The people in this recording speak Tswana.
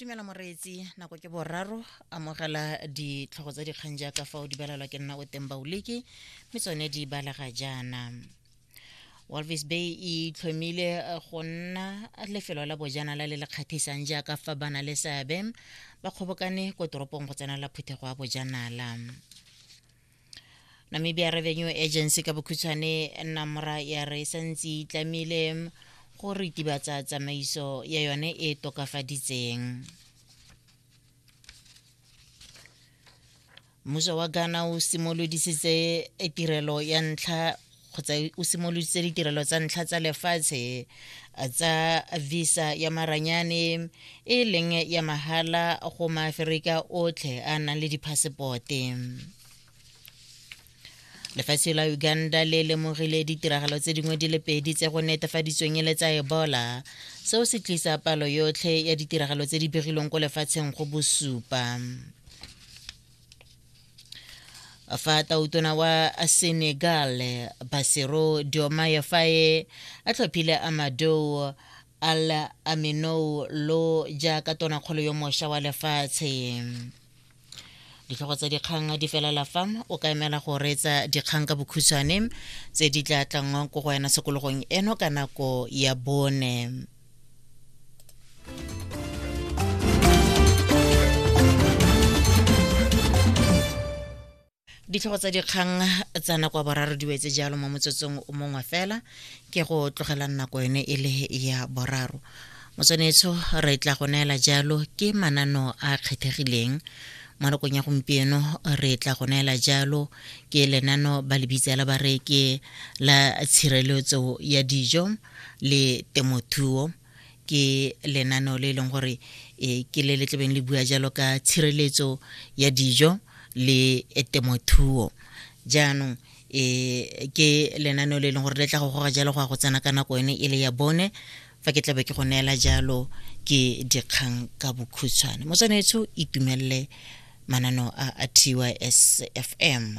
dumela moreetsi nako ke boraro amogela ditlhogo tsa dikgang jaaka fa o di balelwa ke nna o teng baoleke mme tsone di balega jaana walvis bay e itlhomile eh, go nna lefelo la bojanala le le kgatlhisang jaaka fa ba na le seabe ba kgobokane ko toropong go tsenela phuthego ya bojanala namibia revenue agency ka bokhutshwane namra ya re santse itlamile go ritibatsa tsamaiso ya yone e tokafaditseng mmuso wa ghana o simolodisitse tirelo ya ntlha kgotsa o simoloditse ditirelo tsa ntlha tsa lefatshe eh, tsa visa ya maranyane e leng ya mahala go maaferika otlhe a nang le diphasepote lefatshe la uganda le lemogile ditiragalo tse dingwe di le pedi tse go netefaditsweng e le tsa ebola seo se tlisa palo yotlhe ya ditiragalo tse di begilweng ko lefatsheng go bosupa fa tautona wa senegal basero diomaye faye a tlhophile amadou al aminou lo jaaka tonakgolo yo mošwa wa lefatshe ditlhogo tsa dikgang di felela fa o ka emela go reetsa dikgang ka bokhutshwane tse di tla tlanngwang ko go wena sekologong eno ka nako ya bone ditlhogo tsa dikgang tsa nako ya boraro di wetse jalo mo motsotsong o mongwe fela ke go tlogelang nako yone e le ya boraro motswanetsho re tla go neela jalo ke manano a kgethegileng mo nakong ya gompieno re tla go neela jalo ke lenano ba le bitsa la bareke la tshireletso ya dijo le temothuo ke lenaneo le e leng gore e ke le le tlebeng le bua jalo ka tshireletso ya dijo le temothuo jaanong e ke lenaneo le e leng gore le tla go goga jalo go ya go tsena ka nako yone e le ya bone fa ke tlabe ke go neela jalo ke dikgang ka bokhutshwane mo tshwanetso itumelele mananeo a a tysfm